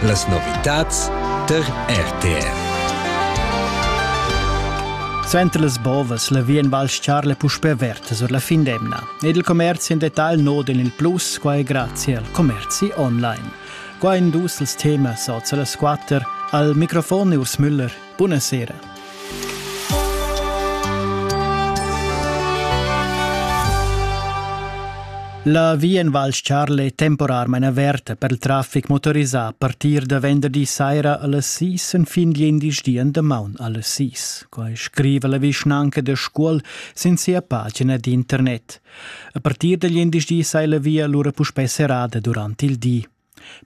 Las novitads tar RTR. Suenter las bovas la via in Val Charle puspè averta sur la fin d'emna. Ed il commerzi en detagl noden il plus, quai grazie al commerzi online. Qua in dus als temas oz las quatter al microfon Urs Müller Buna sera. La via in Val Charle è temporarmain averta per il traffic motorisà a partir da venderdi saira alle 6 en fin gl'indisch di en damaun alle 6. Quai scriva la vischnanca da Scuol sin sia pagina d'internet. A partir da gl'indisch di sai la via lura puspè serrada durant il di.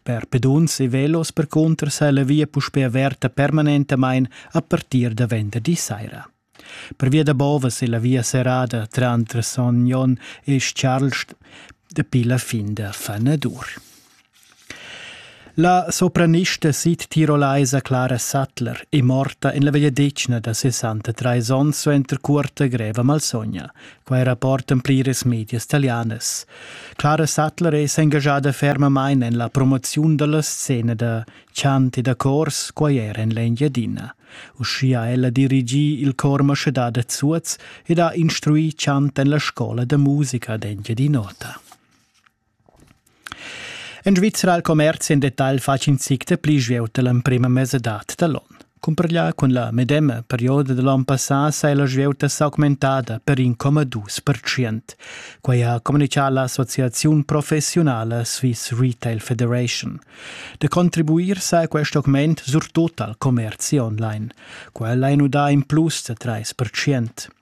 Per peduns e velos percunter sa la via puspè averta permanentamain a partir da venderdi saira. Pervia da bovas è la via serrada tranter Son Jon e Charlst dapi la fin da Fanadur. La sopranista sid-tirolaisa Clara Sattler è morta en la vegliadetgna da 63 onns suenter cuorta greva malsogna, Quai rapportan pliras medias talianas. Clara Sattler è s'engaschada fermamain en la promoziun da la scena da chant e da chors quaier en l'Engiadina. Uschia ha ella dirigì il chor Maschedà da Zuoz ed ha instruì chant en la scola da musica d'Engiadin'Ota. En Svizra al commerzi en detagl fatg in zic da pli svelt da l'emprima mesadad da l'on. Cumparglià cun la medema perioda da l'on passà s'è la svieuta s'augmentada per 1,2%. Quai ha communitgà l'associaziun professiunala Swiss Retail Federation. Da contribuir sa quest augment surtut al commerzi online. Quel ha nudà in plus da 3%.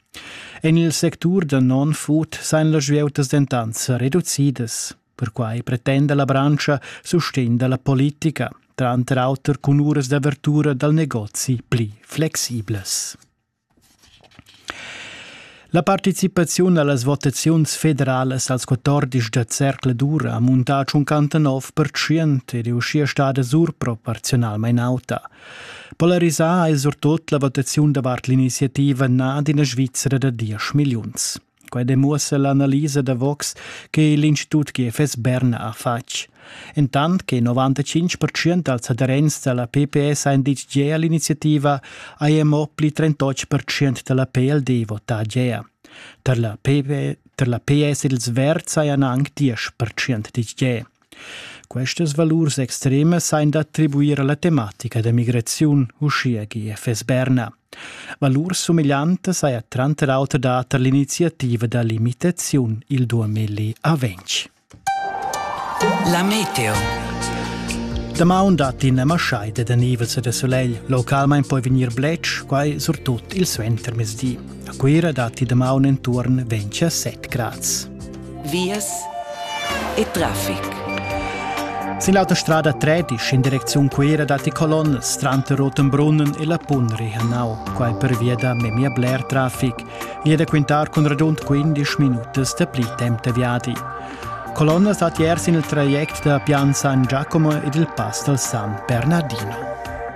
En il sectur da non-food sajan las vieutas dentant sa reducidas. Perquai pretenda la branscha sustegn da la politica, tranter auter cun uras d'avertura dal negozi pli flexiblas. La participaziun a las votaziuns federalas als 14 da cercla dura ha muntà tschuncantanov per tschient ed è uschia stada surproporziunalmain auta. Polarisà è surtut la votaziun davart l'iniziativa na d'ina Svizzera da diesch milliuns. Quai demuossa l'analisa da Vox che l'Institut GFS Bern ha fatg. Entant che 95% dals aderents da la PPS han ditg gea all'iniziativa, haja mo pli 38% da la PLD votà gea. Tar la, PP, tar la PS ils Verds hajan anc 10% ditg gea. Questas valurs extremas ein d'attribuir alla tematica da migraziun, uschia gie FS Berna. Valurs sumegliantas haja tranter auter dat all'iniziativa da limitaziun il 2020. La meteo. Damaun dat in maschaida da nivels e da solegl. Localmein poi vegnir bletsch, quai surtut il suentermezdi. A Cuira datti damaun intorno 27 grads. vias e traffic. Sin l'autostrada 13 in direcziun Cuira datti colonnas tranter Rotenbrunnen e la Punrihanau, quai pervia da memia bler traffic. E da quintar cun radund 15 minutas da pli temp da viadi. Colonnas datti er sin il traject da Pian San Giacomo ed il pass dal San Bernardino.